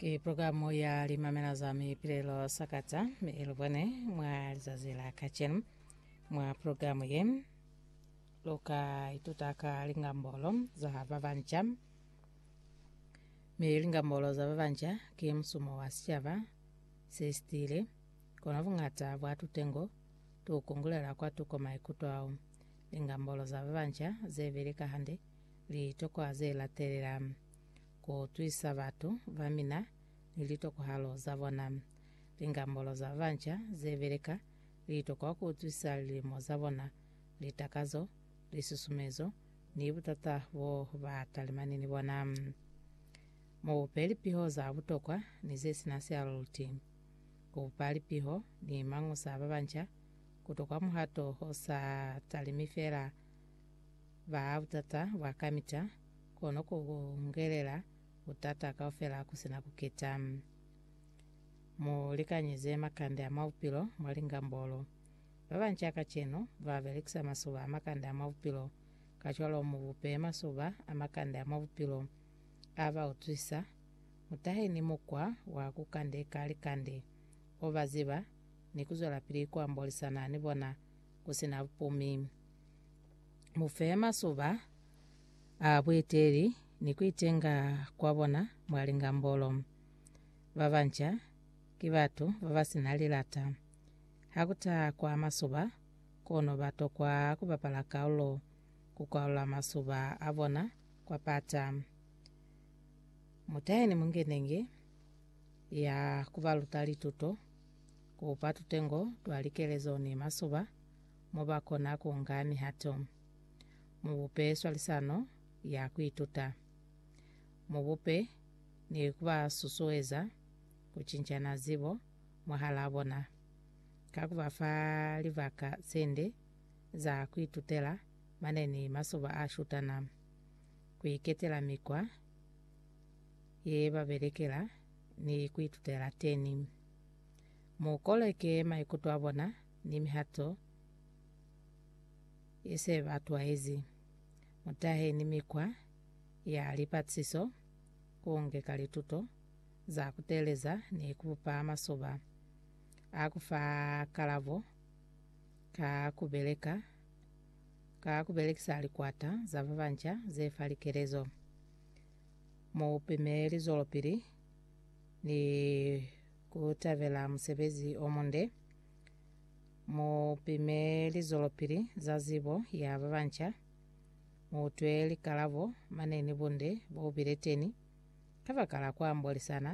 Ke programu ya limamela za mipilelo sakata mi ilubone mwa lizazi la kacenu mwa programu ye luka ituta ka lingambolo za babanca mi lingambolo za babanca ke musumo wa sicaba se sitile kono bungata bwa tutengo tu kungulela kwa tuko maikuto ao lingambolo za babanca zebili kahande litokwa ze latelela ku utwisa batu ba mina ni litokohalo za bona. Lingambolo za banca ze beleka liito kwa ku utwisa lilimo za bona, litakazo, lisusumezo, ni butata bo ba talimani ni bona. Mu bupe lipiho za butokwa ni ze si na sialuti. Ku bupa lipiho ni mañusa ba banca ku tokwa muhato o sa talimi fela, ba butata bwa kamita, kono ku ngelela butata kaufela ku sina ku keta. Mu likanyize makande a mwa bupilo mwa lingambolo. Ba banca a kacenu ba belekisa masuba a makande a mwa bupilo, kacwalo mu bupe masuba a makande a mwa bupilo a ba utwisa. Mu tahe ni mukwa wa ku kandeka likande o ba ziba ni ku zwelapili ku ambolisana ni bona ku si na bupumi. Mu fe masuba a bueteli ni ku itenga kwa bona mwa lingambolo. Ba banca ki batu ba ba si na lilata. Ha ku taha kwa masuba, kono ba tokwa ku bapala kaulo ku kwalula masuba a bona kwa pata. Mu tahe ni mungenenge ya ku ba luta lituto. ku pa tutengo twa likelezo ni masoba mo ba kona ku nga mihato. Mu bupe swalisano ya ku ituta. Mu bupe ni ku ba susueza ku cincana zibo mwahalaa bona, ka ku ba fa libaka ze nde za ku itutela mane ni masoba a shutana, ku iketela mikwa ye ba belekela ni ku itutela teni. Mu koleke maikuto a bona ni mihato ye se ba twaezi. Mu tahe ni mikwa ya lipatisiso ku ngeka lituto za ku teeleza ni ku bupa masoba a ku fa kalabo ka ku beleka ka ku belekisa likwata za ba banca ze fa likelezo. Mu pime lizwelopili ni ku tabela musebezi o munde. Mu pime lizwelopili za zibo ya ba banca. Mu utwe likalabo mane ni bunde bo bile teni kabakala ku ambolisana